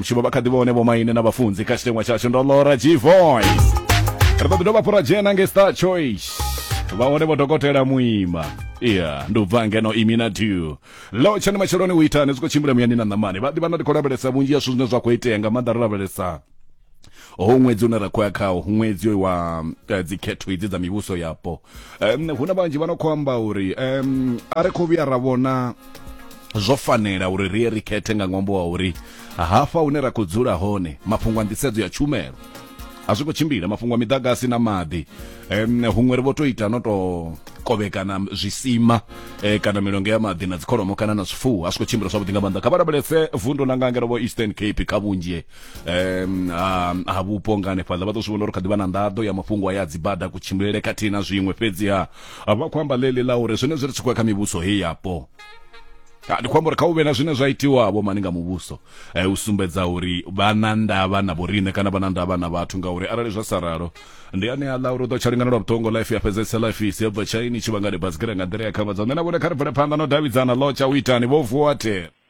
vhutshilo vha kha ḓivha hone vhomaine na vhafunzi kha tshiteṅwa tshashu ndo lora g voice ri ḓo ḓi dovha fhura dzhena nge star choice vha hone vho dokotela muima iya ndi u bva ngeno imi na dew lo tshani matsheloni u itani zwi khou tshimbila muyani na ṋamani vha ḓivha na ndi khou lavhelesa vhunzhi ya zwithu zwine zwa khou itea nga maanḓa ri lavhelesa ho ṅwedzi une ra khou ya khawo ṅwedzi wa eh, dzikhetho idzi dza mivhuso yapo um, hu na vhanzhi vha no khou amba uri um, a ri khou vhuya ra vhona zwo fanela uri ri ye ri khethe nga ṅwambo wa uri hafha hune ra khou dzula hone mafhungo a nḓisedzo ya tshumelo a zwi khou tshimbila mafhungo a miḓagasi na maḓi um, huṅwe ri vho to ita no to kovhekana zwisima eh, kana milongo ya maḓi na dzikholomo kana na zwifuwo a zwi khou tshimbila zwavhuḓi nga maanḓa kha vha lavhelese vundo na nga ngero vho eastern cape kha vhunzhi um ha ha vhupo nga hanefhaḽa vha ḓo zwi vhona uri kha ḓivha na nḓaḓo ya mafhungo aya a dzibada kutshimbilele khathihi na zwiṅwe fhedziha vha khou amba ḽeḽi ḽa uri zwenezwi ri tshi khou ya kha mivhuso heyi yapo Ha, ndi khou amba uri kha u vhe na zwine zwa itiwa vho mani nga muvhuso eh, u sumbedza uri vha na ndavha na vhoriṋe kana vha na ndavha na vhathu ngauri arali zwa sa ralo ndi ane a ḽa uri u ḓo tsha lingana lwa vhuṱongo life ya fhedzesa life isi ya bva tshaini tshi vhangale basikira nga nḓila ya khavhadzo nṋe na vhone kha ri bvele phanḓa no davhidzana ḽo tsha u itani vho vuwa the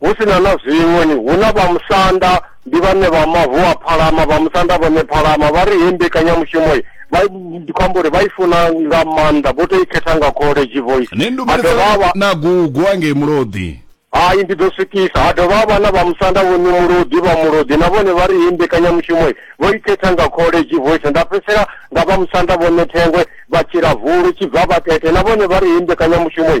Hu si na na zwiṅwe, ni hu na vhamusanda, ndi vhane vha mavu a phalama, vhamusanda vhone phalama. Vha ri hei mbekanyamushumo vha ndi khou amba uri vha i funa nga maanḓa, vho tou i khetha nga kholeji vho i. Ni ndumelisa na gugu angei Mulodi. Hai, ndi ḓo swikisa. Ha dovha ha vha na vhamusanda vho ni Mulodi, vha Mulodi na vhone vha ri hei mbekanyamushumo vho i khetha nga kholeji vho i. Nda fhedzisela nga vhamusanda vhone Thengwe, vha Tshilavhulu, Tshibvabakete na vhone vha ri hei mbekanyamushumo.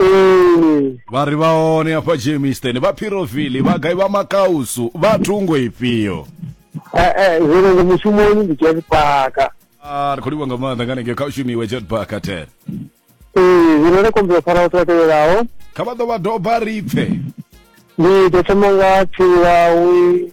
ee vha ri vha hone hafha jameson vha phirovili vha gai vha makausu vha thungo ifhio Eh, eh, zwino ndi mushumoni ndi dzhia zwipaka Ah, ri khou livha nga maanḓa nga nenge kha u shumiwe jetbaka ten ee zwino ndo kombela u fara vhathu vha tevhelaho kha vha ḓo vha doba ri pfe ndi ḓo thoma nga tsiwawi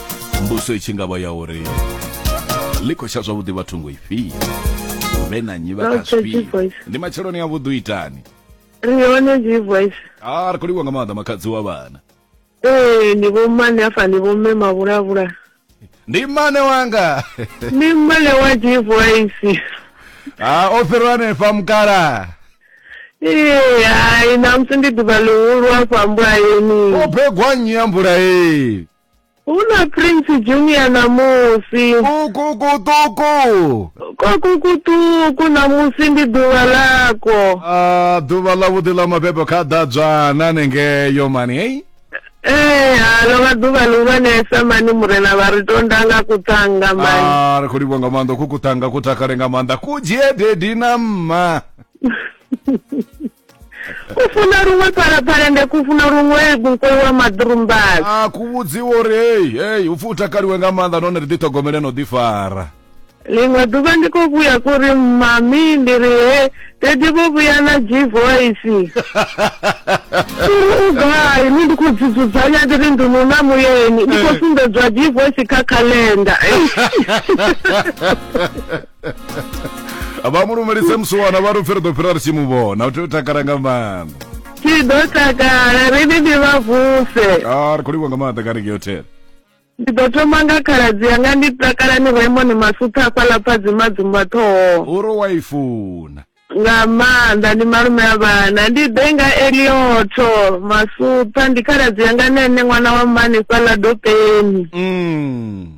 mbuso i tshi ngavha ya uri ḽi khou tsha zwavhuḓi vha thungo ifhio vhe na nyi vha kafhio ndi matsheloni a vhuḓi itani ri hone dzi voice a ah, ri khou livhuwa nga maanḓa makhadzi wa vhana ee ni vho mmane afha ni vho mme mavhulavhula ndi mmane wanga ndi mmane wa dzi voice ha o fhirwa hanefha mukala ee hai namusi ndi ḓuvha ḽihulu afha mbulayeni o begwa nnyi ya mbulayeni Hu na Prince Junior ṋamusi. Kukukuṱuku. Kwakukuṱuku ṋamusi ndi ḓuvha ḽakwo. A ḓuvha ḽa vhuḓi ḽa mabebo kha ḓadzwana nengeyo mani hei. Ee ha ḽo vha ḓuvha ḽihulwanesa mani murena vha ri tonda nga kuṱanga mani. Ah, ri khou livhuwa nga maanḓa ku kuṱanga ku takale nga maanḓa ku dzhie dedi na mma. kufuna luṅwe phalaphala nde kufuna luṅwe mukoyi wa maḓurumbala a ku vhudziwa uri hei hei upfi u takaliwe nga maanḓa nahone ri ḓiṱhogomele no ḓifara ḽiṅwe ḓuvha ndi khou vhuya kuri mami ndi ri he dedi vho vhuya na g voice uri u gai ni ndi khou dzidzudzanya ndi ri ndi nuna muyeni ndi khou eh. sumbedzwa g voice kha calenda vha mu lumelise musiwana vha ri u pfi ri ḓo fhira ri tshi mu vhona u tea u takala nga maanḓa tshi ḓo takala ri ni ndi vha vuse a ri khou livha nga maanḓa kha rege hotel ndi ḓo thoma nga khaladzi yanga ndi takala ni raymond masutha hafhaḽa phadzima dzumba ṱhoho uri wa i funa nga maanḓa ndi malume a vhana ndi ḓe nga eliotho masutha ndi khaladzi yanga nene ṅwana wa mmani fhaḽa dopeni mm.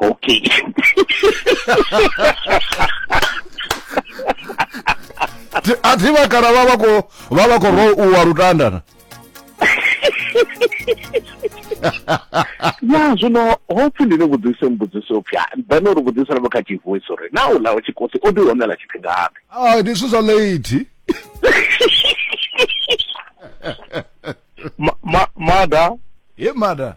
Ok. a thi vha kana vha vha kho vha vha kho ro u wa lutanda na ya zwino hopfi ndi ni vhudzise mbudziso pfya then uri vhudzisa na kha tshivoice uri na u lawa tshikosi o ḓi honela tshifhingapi ai ndi zwithu zwa late Ma- ma- mada ye mada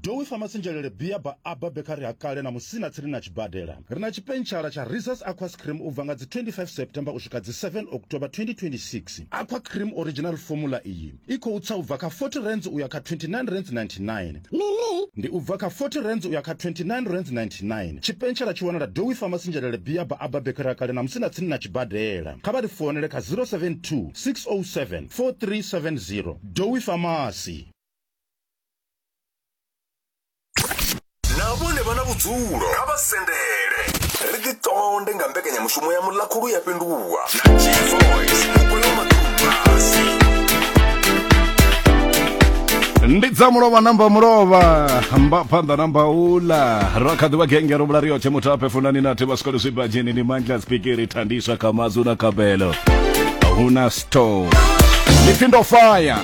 Dowi Pharmacy Njelele Bia ba Abba Bakery ha kale na musina tsini na tshibadela. Ri na tshipentshela tsha Reese's Aquas Cream u bva nga dzi 25 September u swika dzi 7 October 2026. Aqua Cream Original Formula iyi i khou tsa u bva kha R40 u ya kha R29.99. Ndi u bva kha R40 u ya kha R29.99. Tshipentshela tshi wanala Dowi Pharmacy Njelele Bia ba Abba Bakery ha kale na musina tsini na tshibadela. Kha vha ri founele kha 072 607 4370. Dowi Pharmacy. na vhone vha na vhudzulo kha vha sendele ri ḓi ṱonde nga mbekanyamushumo ya muḽakhulu ya fhenduwa na gvoice mukoyo maḓubasi ndi dza mulovha namba mulovha mba phanḓa namba ula ra kha ḓivha genge ro vhula riyotshe muthu aphe funani na thiba swikole zwibadzheni ni mandla spikiri thandiswa kha mazu na kabelo huna store lipfindo fire